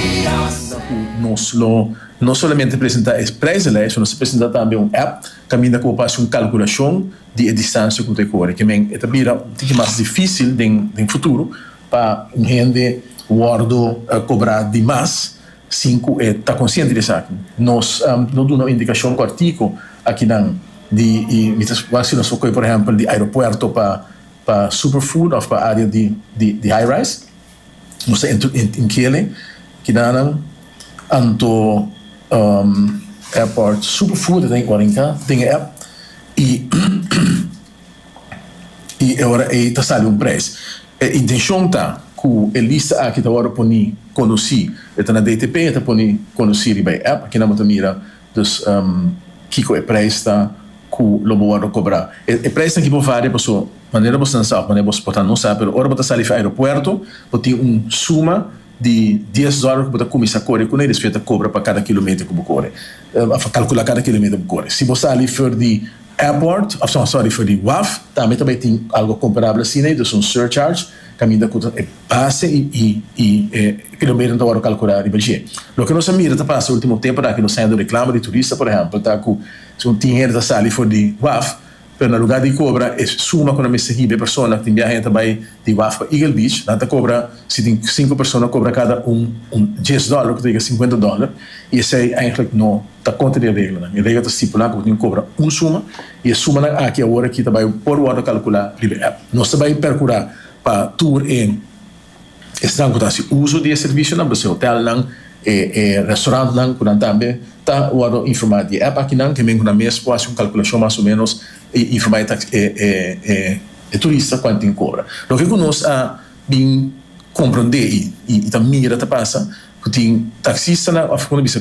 Kaminda ku nos lo no solamente presentá e prijzenlijst, pero nos ta presentá tambe un app kaminda ku bo por hasi un kalkulashon di e distansia ku bo ta e kore. Kimen e ta bira un tiki mas difísil den futuro pa un hende wòrdu kobrá di mas sin ku e ta konsiente di esaki. Nos lo duna un indikashon kòrtiku akinan di e, mi ta wak si nos lo kohe por ehèmpel di aeropuerto pa Superfood òf pa área di Highrise. Nos ta inkele kidanan anto airport super furti den cuarenca den e app y y e ora ey ta sali un prijs. E intencion ta cu e lista aki ta wordo poni conoci e ta na DTP e ta poni conoci riba e app aki nan bo ta mira Dus kiko e prijs ta ku lo bo wòrdu kobrá? E prijsnan aki por varia pasobra manera bo stansa òf manera bo por ta no sa, pero ora bo ta sali fi aeropuerto bo tin un suma di dies dòler ku bo ta kuminsá kore kuné i despues bo ta kobra pa kada kilometer ku bo kore òf kalkulá kada kilometer ku bo kore. Si bo sali for di airport, sòri for di waf tambe ta bai tin algu komparabel asina i ta un surcharge. Caminda cu ta e base y y y e kilometer ta worde calcula riba dje. Loke nos a mira ta pasa ultimo temponan aki nos ta hende reclama di turista por ehempel ta cu su tin hende ta sali for di waf pero na lugar di cobra e suma cu nan mester hiba e persona tin biaha hende ta bay di waf pa Eagle Beach nan ta cobra si tin cinco persona cobra cada un un djes dollar cu ta yega cincuenta dollar y esey eigenlijk no ta contra di e reglanan. E regla ta stipula cu bo tin cu cobra un suma I e sumanan aki awor aki ta bai por wòrdu kalkulá riba app. Nos ta bai perkurá pa tur e esnan ku ta hasi uso di e servisionan, por ese hotelnan, e e restaurantnan ku nan tambe ta wòrdu informá di e app akinan, ke men ku nan mes por hasi un kalkulashon mas o ménos i informá e tax e e e e turista kuantu tin ku kobra. Loke ku nos a bin komprondé i i ta mira ta pasa ku tin taksistanan òf kon ta bisa.